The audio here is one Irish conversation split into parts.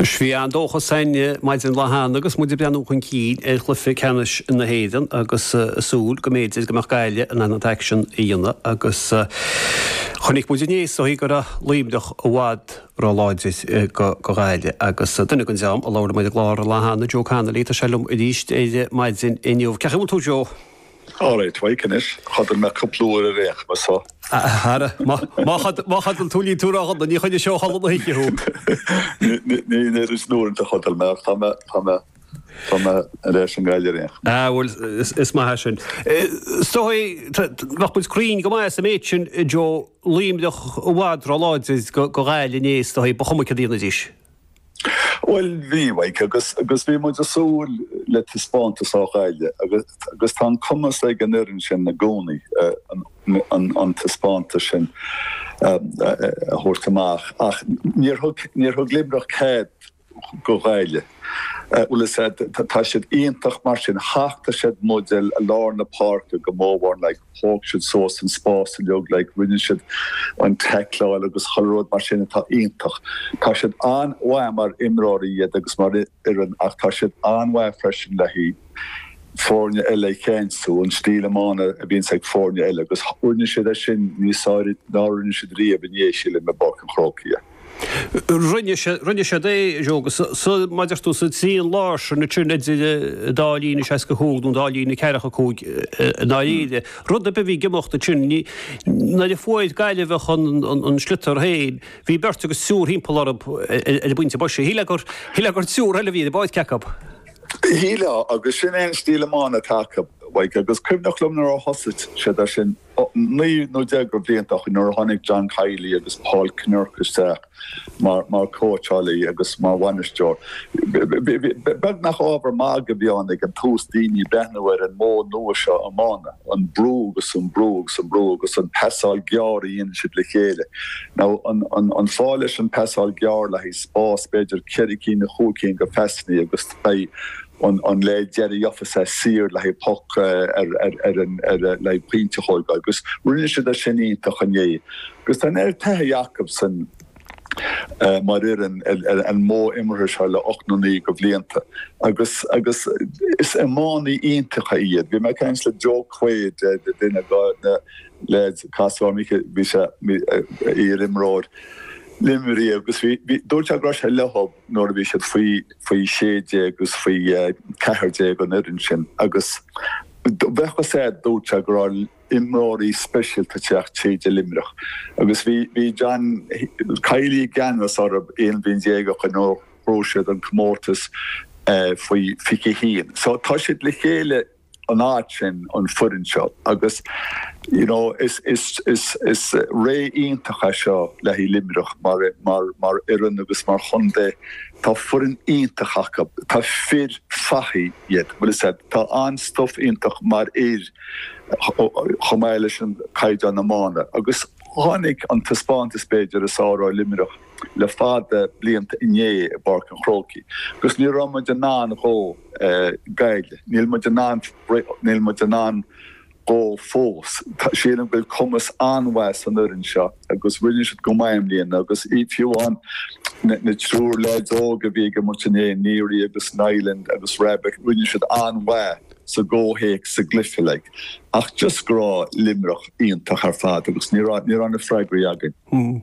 Bhí an-dóchas againn maidin lá cheana agus muid ag breathnú chun cinn ar chluiche ceannais na hÉireann agus súil go mb'fhéidir go mbeadh Gaillimh in ann an t-aicsean a dhéanamh agus chonaic muid inné is dóigh go raibh Luimneach i bhfad róláidir do Ghaillimh agus duine den dream a labhair ar an gclár lá cheana, Joe Connolly, tá sé liom arís ar maidin inniu. Cén chaoi a bhfuil tú Joe? All right, Mike anois. Chodail mé cúpla uair ar aon chuma, so. Ara, má chodail tú níl tú ródhona, níor choinnigh sé ó chodladh na hoíche thú. Ní an oiread sin uaireanta a chodail mé, ach tá mé, tá mé, tá mé ar ais i nGaillimh ar aon chuma. Ah, bhuel, is maith sin. Is dóigh, bheadh muid cruinn go maith sa méid sin, Joe, Luimneach i bhfad róláidir do Ghaillimh inné, is dóigh, ba chuma céard a dhéanfaidís. Bhuel, bhí, Mike, agus bhí muid ag súil le taispeántas ó Ghaillimh agus tá an cumas ag an fhoireann sin i gcónaí an taispeántas sin a thabhairt amach ach níor thug, níor thug Luimneach cead do Ghaillimh. Bhuel, is ea, tá siad iontach mar sin, thacht siad muid i lár na páirce go mór mhór, like. thóg siad suas an spás uilig, like, rinne siad an taicleáil agus chuile rud mar sin atá iontach. Tá siad an-mhaith mar imreoirí iad agus mar fhoireann ach tá siad an-mhaith freisin le haghaidh foirne eile a cheansú, an stíl iomána a bhíonns ag foirne eile agus rinne siad é sin níos airde ná rinne siad riamh inné, sílim, i bPáirc an Chrócaigh. Rinne siad é, Joe, agus mar a deir tú sa trian láir sin, trian idir an dá líne seasca a cúig nó an dá líne ceathracha a cúig i ndáiríre, rud ar bith a bhí ag imeacht ansin, ní, nuair a fuair Gaillimheach an sliotar féin, bhí beirt agus triúr thimpeall orthu ar an bpointe boise. Shílfeá gur, shílfeá gur triúr eile a bhí ar an bpáirc acu. Shílfeá, agus sin é an stíl iomána atá acu, Mhaidhc, agus cuimhneach liom nuair a thosaigh siad ar sin, Naoi nó deich de bhlianta ó shin, nuair a tháinig John Kiely agus Paul Kinnerk isteach mar chóitseálaí agus mar bhainisteoir, beagnach ábhar magaidh a bhí ann ag an tús daoine ag breathnú ar an mhodh nua seo iomána, an brú agus an brú agus an brú agus an pasáil gearr a dhéanann siad le chéile. Now, an fáth leis an pasáil gearr le haghaidh spás b'fhéidir ceithre cinn nó chúig cinn de phasannaí agus beidh, An an leaid deireadh gheobhaidh sé saor le haghaidh poc ar ar an ar le haghaidh pointe a thógáil agus rinne siad é sin iontach inné agus tá an oiread taithí acusan mar fhoireann ar ar an modh imeartha seo le ocht nó naoi de bhlianta agus agus is iománaí iontacha iad. Bhí mé ag caint le Joe Quaid e de duine de na leaids i Castle Mick bhí sé iar-imreoir Luimnigh agus bhí dúirt sé go raibh sé leo nuair a bhí siad faoi 16 agus faoi 14 an fhoireann sin agus bheadh fhios agat, dúirt sé go raibh imreoirí speisialta ag teacht tríd i Luimneach agus bhí bhí John Kiely i gceannas orthu aon bhliain déag ó shin nuair a shroich siad an comórtas faoi 21 so tá siad le chéile an áit sin, an foireann seo agus you know is is is is ré iontach é seo le haghaidh Luimneach mar mar mar fhoireann agus mar chontae tá foireann iontach acu tá fir fathaigh iad bhfuil fhios agat tá an-stuff iontu mar fhir chomh maith leis an caighdeán iomána agus tháinig an taispeántas b'fhéidir is fearr ó Luimneach le fada blianta inné i bPáirc an Chrócaigh agus ní raibh muid in ann dhó Gaillimh, níl muid in ann níl muid in ann dhó fós. Sílim go bhfuil cumas an-mhaith san fhoireann seo agus rinne siad go maith i mbliana agus fiú amháin na triúr leaids óg a bhí ag imirt inné, Neary agus Niland agus Rabbitte, rinne siad an-mhaith sa gcomhthéacs sa gcluiche like. Ach just go raibh Luimneach iontach ar fad agus ní raibh ní raibh na freagraí againn.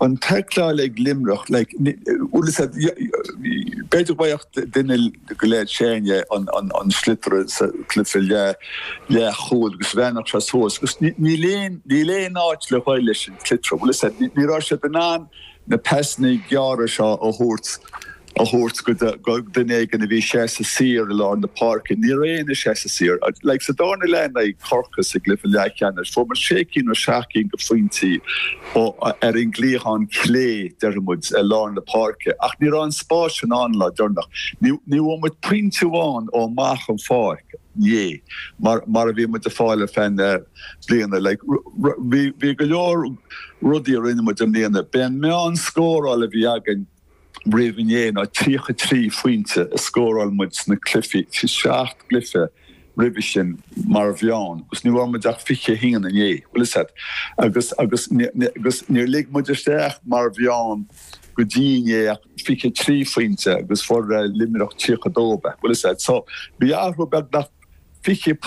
an taicleáil ag Luimneach like bhfuil fhios agat b'fhéidir go mbeadh duine go léir féin é an an an sliotar sa cluiche le leath chúl agus bhreathnódh sé suas agus ní níl aon níl aon áit le dhul leis an sliotar bhfuil fhios agat ní raibh siad in ann na pasanna gearra seo a thabhairt a thabhairt go duine éigin a bhí seasta saor i lár na páirce. Ní raibh éinne seasta saor. Sa dara leath in aghaidh Chorcaí sa gcluiche leathcheannais, fuaireamar sé cinn nó seacht gcinn de phointí ar an gcliathán clé, déarfaidh muid, i lár na páirce, ach ní raibh an spás sin ann an lá deireanach. Ní bhfuair muid pointe amháin ó amach an pháirc inné mar a bhí muid ag fáil ar feadh na bliana. Bhí go leor rudaí a rinne muid i mbliana. B'é an meán scórála a bhí againn, roimh inné ná 33 phointe a scóráil muid sna cluichí, 7 gcluiche roimhe sin mar mheán agus ní bhfuair muid ach 21 inné, bhfuil fhios agat, agus agus níor lig muid isteach mar mheán go dtí inné ach 23 phointe agus fuair Luimneach 32, bhfuil fhios agat. So bhí athrú beagnach 20